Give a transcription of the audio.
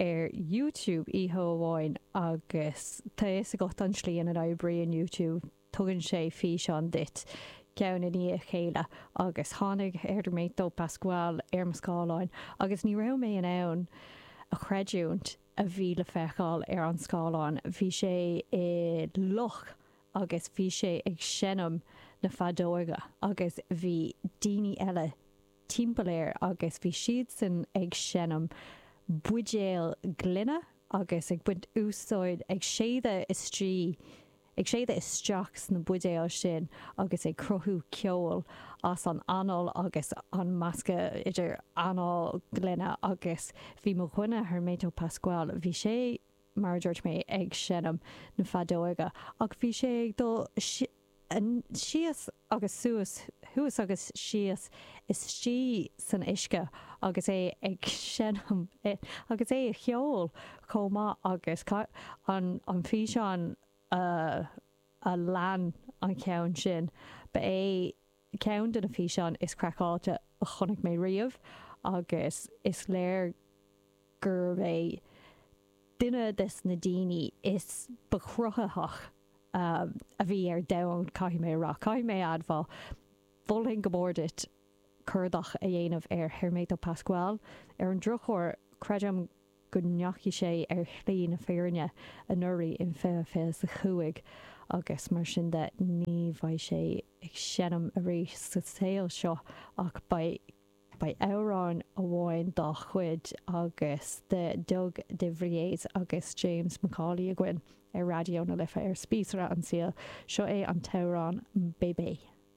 ar YouTube oíche amháin agus tá a fhios agat an tslí ina n-oibríonn YouTube, tugann sé físeán duit ceann i ndiaidh a chéile agus tháinig Hermeto Pascoal ar mo scáileán agus ní raibh mé in ann a chreidiúint a bhí le feiceáil ar an scáileán, bhí sé i loch agus bhí sé ag seinm na feadóige agus bhí daoine eile timpeall air agus bhí siadsan ag seinm buidéal gloine agus ag baint úsáid, ag séideadh istigh, ag séideadh isteach sna buidéil sin agus ag cruthú ceoil as an anáil agus an meascadh idir anáil, gloine agus. Bhí mo dhuine, Hermeto Pascoal, bhí sé, mar a dúirt mé, ag seinm na feadóige ach bhí sé ag dul, síos agus suas, thuas agus síos istigh san uisce agus é ag seinm agus é ag ceol chomh maith agus an físeán a lean an ceann sin, ba é ceann de na físeáin is craiceáilte a chonaic mé riamh agus is léir gurbh é duine des na daoine is ba chruthaitheach a bhí ar domhan, caithfidh mé a rá, caithfidh mé a admháil. Mholfainn go mór duit cuardach a dhéanamh ar Hermeto Pascoal. Ar an drochuair, creidim go ndeachaigh sé ar shlí na fírinne anuraidh in 2025 agus mar sin de ní bheidh sé ag seinm arís sa saol seo ach beidh amhrán amháin dá chuid agus de Doug de Vries agus James McCauley againn ar Raidió na Life ar Spíosra an tsaoil. Seo é an t-amhrán Bébé.